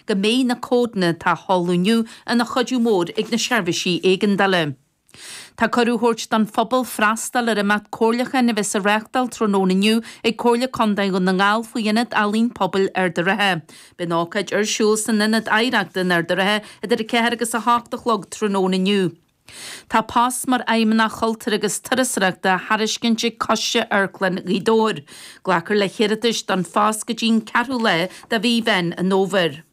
go mbeidh na códanna atá á sheoladh inniu ina chuidiú mór ag na seirbhísí éigeandála. Tá cuireadh á thabhairt don phobal freastal ar imeacht comhairliúcháin a bheas á reáchtáil tráthnóna inniu ag Comhairle Contae Dhún na nGall faoi Ionad Ealaíon Pobail Ard an Rátha. Beidh an ócáid ar siúl san Ionad Oidhreachta in Ard an Rátha idir 4 agus 8 a chlog tráthnóna inniu. Tá post mar Fheidhmeannach Chultúir agus Turasóireachta á thairiscint ag Coiste Amharclann Ghaoth Dobhair. Glacfar le hiarratais don phost go dtí an ceathrú lá de mhí Mheán an Fhómhair.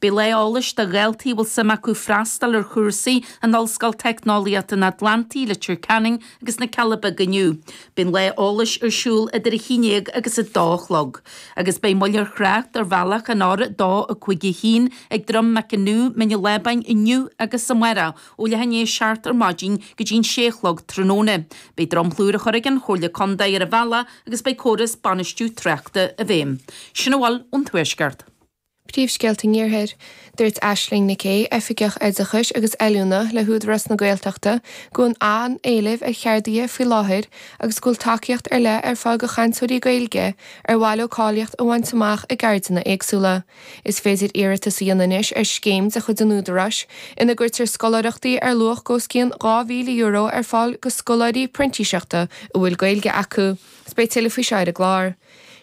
Beidh lá eolais do dhaltaí a bhfuil suim acu freastal ar chúrsaí in Ollscoil Teicneolaíochta an Atlantaigh, Leitir Ceanainn, agus na Cealla Beaga inniu. Beidh an lá eolais ar siúl idir a haon déag agus a dó a chlog. Agus beidh moill ar thrácht ar bhealach an R2 a cúig a haon ag Droim Mac Anú, Mín an Lábáin inniu agus amárach, ó leath i ndiaidh a seacht ar maidin go dtí an sé a chlog tráthnóna. Beidh dromchla úr á chur ag an Chomhairle Contae ar an bhealach agus beidh córas bainistiú tráchta i bhfeidhm. Sin a bhfuil ón Tuaisceart. Príomhscéalta an Iarthair. Dúirt Aisling Nic Aoidh, Oifigeach Oideachais agus Oiliúna le hÚdarás na Gaeltachta, go bhfuil an-éileamh ar cheardaithe faoi láthair agus go bhfuil tacaíocht ar leith ar fáil do chainteoirí Gaeilge ar mhaith leo cáilíocht a bhaint amach i gceirdeanna éagsúla. Is féidir iarratas a dhéanamh anois ar scéim de chuid an Údaráis ina gcuirtear scoláireachtaí ar luach os cionn €2,000 ar fáil do scoláirí printíseachta a bhfuil Gaeilge acu. Beidh tuilleadh faoi seo ar an gclár.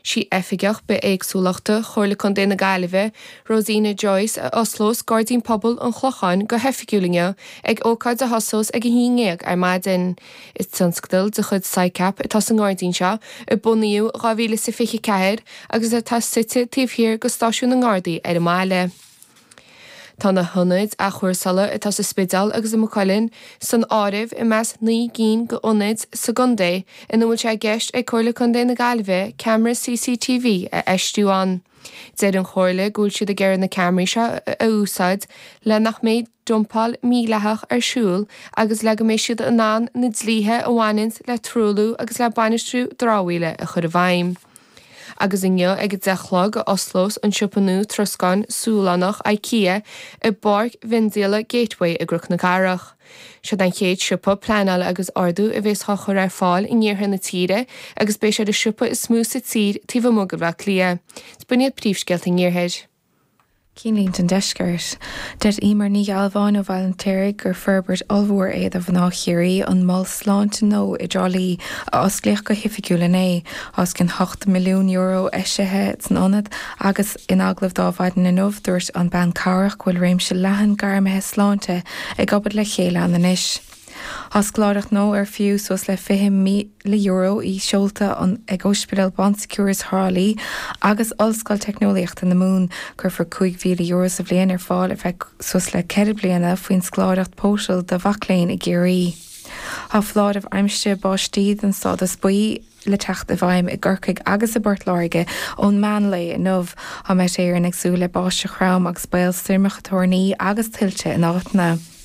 Is í Oifigeach Bithéagsúlachta Chomhairle Contae na Gaillimhe, Rosina Joyce, a osclós Gairdín Pobail an Chlocháin go hoifigiúil inniu ag ócáid a thosós ag a haon ndéag ar maidin. Is tionscadal de chuid Sicap atá sa ngairdín seo, a bunaíodh in 2024 agus atá suite taobh thiar de Stáisiún na nGardaí ar an mbaile. Tá na hionaid athchúrsála atá sa Spidéal agus i Maigh Cuilinn san áireamh i measc naoi gcinn d'ionaid sa gcontae ina bhfuil sé i gceist ag Comhairle Contae na Gaillimhe ceamara CCTV a fheistiú ann. Deir an Chomhairle go bhfuil siad ag iarraidh na ceamaraí seo a úsáid le nach mbeidh dumpáil mhídhleathach ar siúl agus le go mbeidh siad in ann na dlíthe a bhaineann le truailliú agus le bainistiú dramhaíola a chur i bhfeidhm. Agus inniu ag a deich a chlog a osclós an siopa nua troscáin Sualannach, Ikea, i bpáirc mhiondíola Gateway i gCnoc na Cathrach. Siod an chéad siopa pleanála agus ordú a bheas á chur ar fáil in iarthar na tíre agus beidh sé ar an siopa is mó sa tír taobh amuigh de Bhleá Cliath. Is b'in iad príomhscéalta an iarthair. Cinnlínte an Deiscirt. Deir Emer Ní Ghealbháin ó Bhaile an tSaoraigh gur forbairt ollmhór é do mhná Chiarraí an mol sláinte nua i dTrá Lí a osclaíodh go hoifigiúil inné, os cionn €8 milliún eisithe san ionad agus in agallamh d'Adhmhaidin inniu dúirt an bean cabhrach go bhfuil réimse leathan gairmithe sláinte ag obair le chéile ann anois. Tá scoláireacht gnó ar fiú suas le €20,000 í seolta ag Óispidéal Bon Secours Thrá Lí agus Ollscoil Teicneolaíochta na Mumhan. Cuirfear €5,000 sa bhliain ar fáil ar feadh suas le ceithre bliana faoin scoláireacht Potel do mhac léinn i gCiarraí. Tá foláireamh aimsire báistí den stádas buí le teacht i bhfeidhm i gCorcaigh agus i bPort Láirge ón meán lae inniu. Tá Met Éireann ag súil le báisteach throm agus baol stoirmeacha toirní agus tuilte in áiteanna.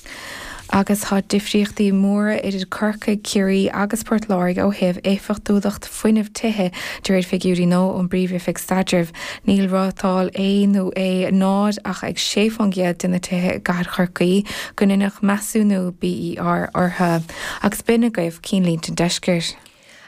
Agus tá difríochtaí móra idir Corcaigh, Ciarraí agus Port Láirge ó thaobh éifeachtúlacht fuinnimh tithe de réir figiúirí nua ón bPríomh-Oifig Staidrimh. Níl rátáil A nó A0 ach ag sé faoin gcéad de na tithe i gcathair Chorcaí go ndeineadh measúnú BER orthu. Agus b'in agaibh cinnlínte an deiscirt.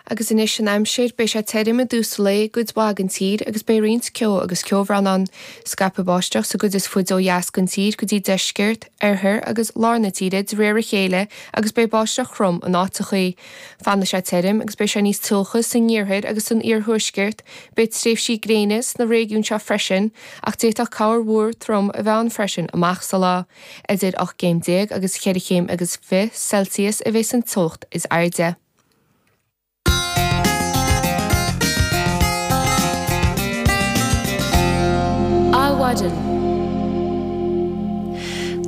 Agus anois an aimsir, beidh sé tirim i dtús lae i gcuid mhaith den tír agus beidh roinnt ceo agus ceobhrán ann. Scaipfidh báisteach sa gcuid is faide ó dheas den tír go dtí deisceart, oirthear agus lár na tíre de réir a chéile agus beidh báisteach throm in áiteachaí. Fanfaidh sé tirim agus beidh sé níos teocha san iarthar agus san iarthuaisceart. Beidh tréimhsí gréine sna réigiúin seo freisin ach d'fhéadfadh corrmhúr trom a bheith ann freisin amach sa lá. Idir ocht gcéim déag agus cheithre chéim agus fiche Celsius a bheidh san teocht is airde. Adhmhaidin.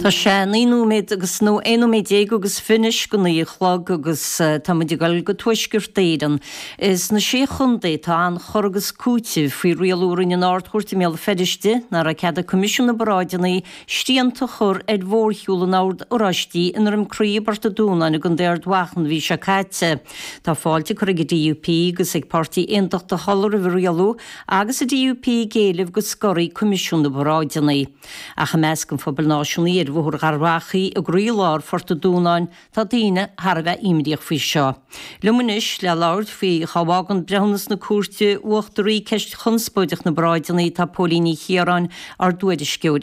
Tá sé naoi nóiméad agus nó aon nóiméad déag agus fiche anois go naoi a chlog agus tá muid ag dul go Tuaisceart Éireann. Is na sé chontae tá an-chur agus cúiteamh faoi rialú a rinne an Ard-Chúirt i mBéal Feirste nach raibh cead ag Coimisiún na bParáideanna Srianta a chur ar mhórshiúl an Oird Oráistí i nDroim Crí i bPort a' Dúnáin i gContae Ard Mhacha an mhí seo caite. Tá fáilte curtha ag an DUP agus ag Páirtí Aontachtach Uladh roimh an rialú agus an DUP ag éileamh go scoirfí Coimisiún na bParáideanna. Ach i measc an phobail náisiúnaí ar Bhóthar Gharbhachaidh i gcroílár Phort a' Dúnáin tá daoine thar a bheith imníoch faoi seo. Liom anois le labhairt faoi cá bhfágann breithiúnas na Cúirte Uachtaraí ceist chonspóideach na bparáideanna tá Póilín Ní Chiaráin, ár dtuairisceoir.